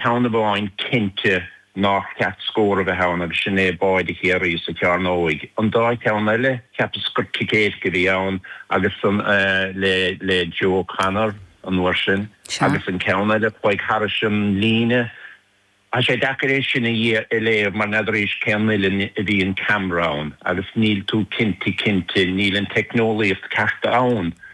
Ceann amháin cinnte nár cheart scór a bheith ann agus sin é Báide Chiarraí sa chearnóig. An dá cheann eile, cheapas gur cic éirice a bhí ann agus an, le, le Joe O'Connor an uair sin agus an ceann eile chuaigh thairis an líne. Tá sé deacair é sin a léamh mar n'fheadar arís cén uillinn a bhí an ceamra ann agus níl tú cinnte cinnte, níl an teicneolaíocht ceart ann.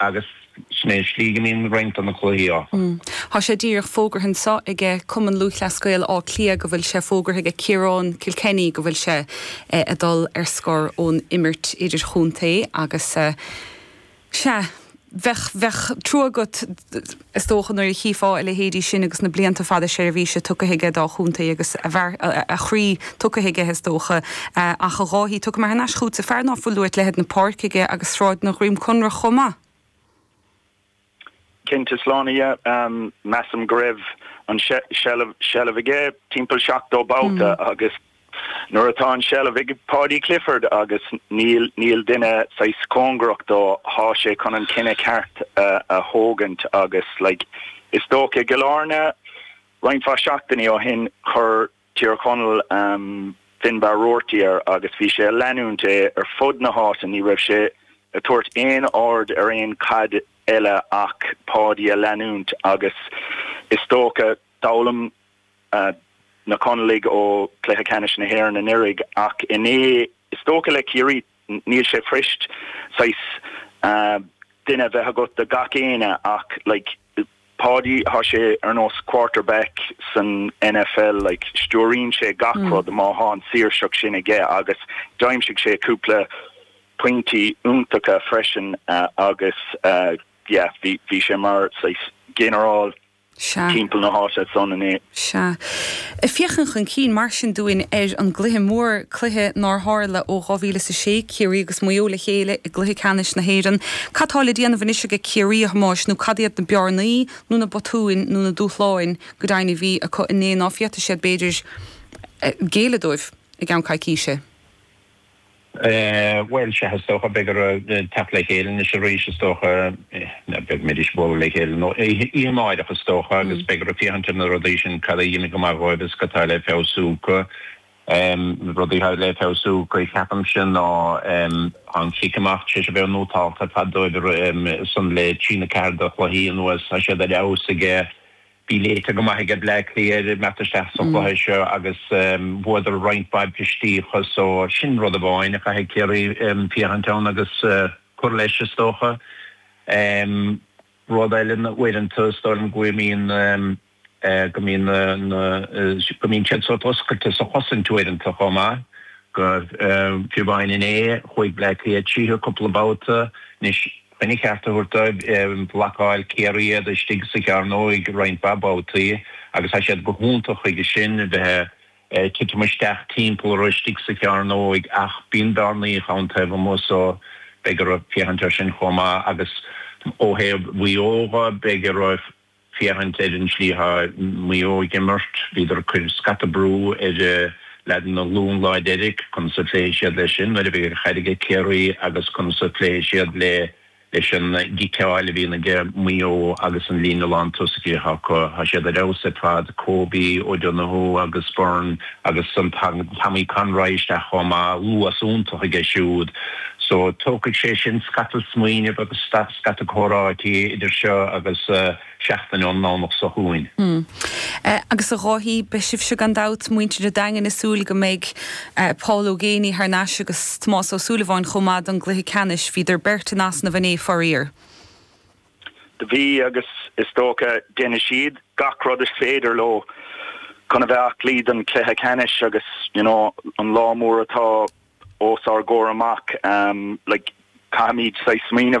agus sin é an slí go n-imíonn roinnt de na cluichí. Ó, tá sé díreach fógartha anseo aige Cumann Lúthchleas Gael Átha Cliath go bhfuil sé fógartha aige Ciarán Kilkenny go bhfuil sé a dul ar scor ón imirt idirchontae agus sea bheadh bheadh trua agat Is dócha nuair a chífeá a leithéidí sin agus na blianta fada seirbhíse tugtha aige dá chontae agus a bheart, a chroí tugtha aige is dócha. Ach a Dháithí, tiocfaidh mé thar n-ais chútsa, fear ná fuil uait leithead na páirce aige agus sráideanna Dhroim Conrach chomh maith. Cinnte, slán aige. Measaim go raibh an seilbh aige timpeall seachtó babhta agus Nuair atá an seilbh ag Paudie Clifford, agus níl, níl duine saghas cóngarach dó, thá sé chun an cinneadh ceart a thógaint agus like is dócha i gCill Áirne roinnt mhaith seachtainí ó shin chuir Tír Chonaill Finbarr Roarty air agus bhí sé a leanúint é ar fud na háite, ní raibh sé a tabhairt aon aird ar aon chaid eile ach Paudie a leanúint agus is dócha, d'fhoghlaim. na Conallaigh ó Chluiche Ceannais na hÉireann anuraidh ach inné, is dócha le Ciarraí, níl sé fuirist saghas duine a bheith agat do gach éinne ach like Páidí, tá sé ar nós quarterback san NFL, like stiúraíonn sé gach rud má tá an saoirseacht sin aige agus d'aimsigh sé cúpla pointí iontacha freisin agus yeah, bhí sé mar saghas ginearál. Sea. timpeall na háite san inné. Sea. Ag féachaint chun cinn, mar sin, dúinn ar an gcluiche mór, cluiche nár tharla ó 2000 is a sé, Ciarraí agus Maigh Eo le chéile i gCluiche Ceannais na hÉireann, cad tá le déanamh anois ag Ciarraí, a Thomáis, nó cad iad na bearnaí, nó na botúin, nó na dúshláin, go deimhin, a bhí acu inné ná féadfaidh siad, b'fhéidir, géilleadh dóibh i gceann coicíse? Bhuel, sea, is dócha, beidh orthu teacht le chéile anois arís, is dócha, beag an mbeidh siad ag bualadh le chéile nó oíche amáireach, is dócha, agus beidh orthu féachaint ar na rudaí sin, cad a d'imigh go maith dhóibh is cad tá le feabhsú acu. Na rudaí atá le feabhsú acu, ceapaimse, ná an cic amach, sé sin, bheith nótálta ar fad dóibh ansan le trí nó ceathair de chluichí anuas, tá siad ar fheabhas aige, Bhí sé léite go maith aige Bleá Cliath ag teacht isteach sa chluiche seo agus bhuadar roinnt mhaith bristíocha so sin rud amháin a chaithfidh Ciarraí féachaint air agus cur leis is dócha. Rud eile ná uaireanta is dóigh liom go mbíonn go mbíonn na go mbíonn siad sórt oscailte sa chosaint uaireanta chomh maith. Fiú amháin inné chuaigh Bleá Cliath tríothu cúpla babhta anois Chun a gceart a thabhairt dóibh. Bhlocáil Ciarraí iad istigh sa chearnóig roinnt mhaith babhtaí agus tá siad go hiontach chuige sin, a bheith ag titim isteach timpeall orthu istigh sa chearnóig, ach bíonn bearnaíocha ann taobh amuigh so beidh orthu féachaint air sin chomh maith. Agus ó thaobh Mhaigh Eo dho, beidh orthu, féachaint ar an tslí a bhí Maigh Eo ag imirt, bhíodar ag cuir scata brú ar lucht na Lú an lá deiridh, conas a phléifidh siad leis sin nuair a bheidh an chaid aige Ciarraí agus conas a phléifidh siad le leis an gciceáil a bhíonn aige Maigh Eo agus an líne lán tosaithe atá acu. Tá siad ar fheabhas ar fad, Kobe, O'Donoghue agus Beirne. Agus ansan Tommy Conroy isteach chomh maith, luas iontach aige siúd. So tógfaidh sé sin scata smaoineamh agus scata comhráití idir seo agus seachtain ón nDomhnach seo chugainn. Hm. Agus a Dháithí, beidh sibhse gan dabht, muintir an Daingin, ag súil go mbeidh Paul Ó Géibheannaigh thar n-ais agus Tomás Ó Súilleabháin chomh maith don gcluiche ceannais. Bhíodar beirt in easnamh inné, faraor. Do bhí, agus is dócha déanfaidh siad, gach rud is féidir leo chun a bheith aclaí don chluiche ceannais agus you know an lá mór atá ós ár gcomhair amach, like caithfimid saghas smaoineamh,